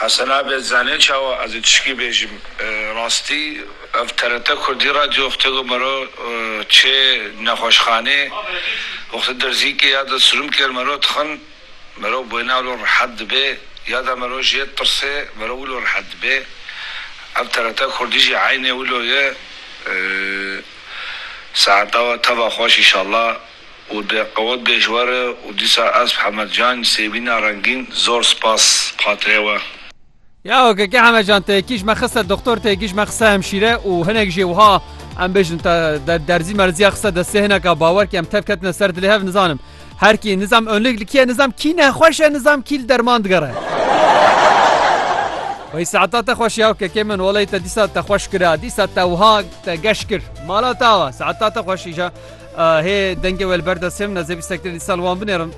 Hesen Abed zanê çawa ez ê tişkî bêjim. Rastî ev TRT Kurdî Radyo wextê ku mero çê nexweşxanê wextê derzîkê ya de sirum kêr mero dixin mero bwêna wilo rehet dibê ya de mero jê tirsê mero wilo rehet dibê. Ev TRT Kurdî jî eynê wilo ye. Saeta we teva xweş inşallah. û di qewet dejwar e û dîsa ez Hemed Can Sêbîna Rengîn zor spas xatirê we. Ya ok ke Hemed Can tê kîj me xiste doxtor tê kîj me xiste hemşîre û hinek jê wiha em bêjin te derzî merzîya xiste destê hineka bawer ke em tev ketine ser dilê hev nizanim her kî nizam onlik li kî nizam kî nexweş e nizam kî li derman digere. Wey saeta te xweş ya kekê min welay te dîsa te xweş kira dîsa te wiha te geş kir mala tawa saeta te xweş îja. Hê dengê we li ber dest him nezê bîstek dir dîsa li wan binêrim.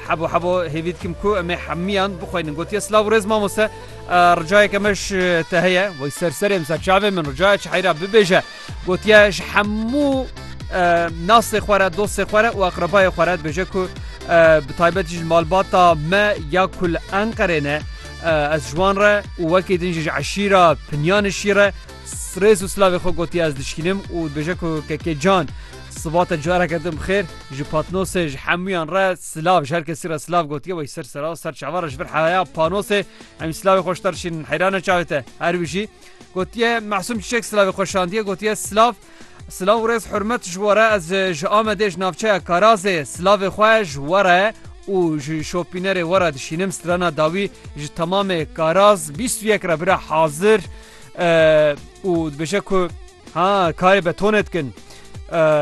Hebo hebo hêvî dikim ku em ê hemiyan bixweynin. Gotiye silav û rêz mamoste. Ricayeke me ji te heye wey ser serê min ser çavê min ricaya çi heyra bibêje. Gotiye ji hemû nasê xwe re dostê xwe re û aqrebayê xwe re dibêje ku bi taybetî ji malbata me ya ku li Enqerê ne ez ji wan re û wekî din jî ji eşîra Pinyanişî re Rêz û silavê xwe gotiye ez dişkînim û dibêje ku Kekê Can siva te careke din bi xêr. Ji Patnosê ji hemûyan re silav ji her kesî re silav gotiye wey ser sera ser çavan re ji vir heya panosê em jî silavê xwe ji te re şînin heyran e çavê te her wî jî gotiye Mesûm Çiçek silavê xwe şandiye gotiye silav Silav û rêz hurmet ji were ez ji Amedê ji navçeya Karazê silavê xwe ji were û ji şopînerê were dişînim strana dawî ji temamê Karaz bîst û yek re bira hazir û dibêje ku ha karê betonê dikin.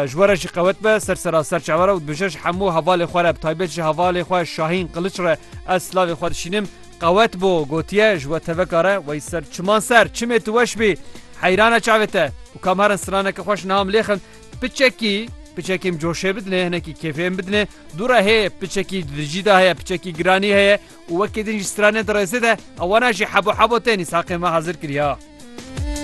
Ji we re jî qewet be ser seraser çavera û dibêje ji hemû hevalê xwe re bi taybet ji hevalê xwe Şahîn Qiliç re ez silavê xwe dişînim. Qewet bo gotiye ji we teveka re wey ser çiman ser çimê tu weş bî heyrane çavê te û kam herin straneke xweş niha min lê xin piçekî piçekî em coşê bidinê hinekî kêfê em bidinê dû re hê piçekî dijî de heye piçekî giranî heye û wekî din jî stranên di rêzê de ewana jî hebo hebo tên Îshaqê me hazir kiriya.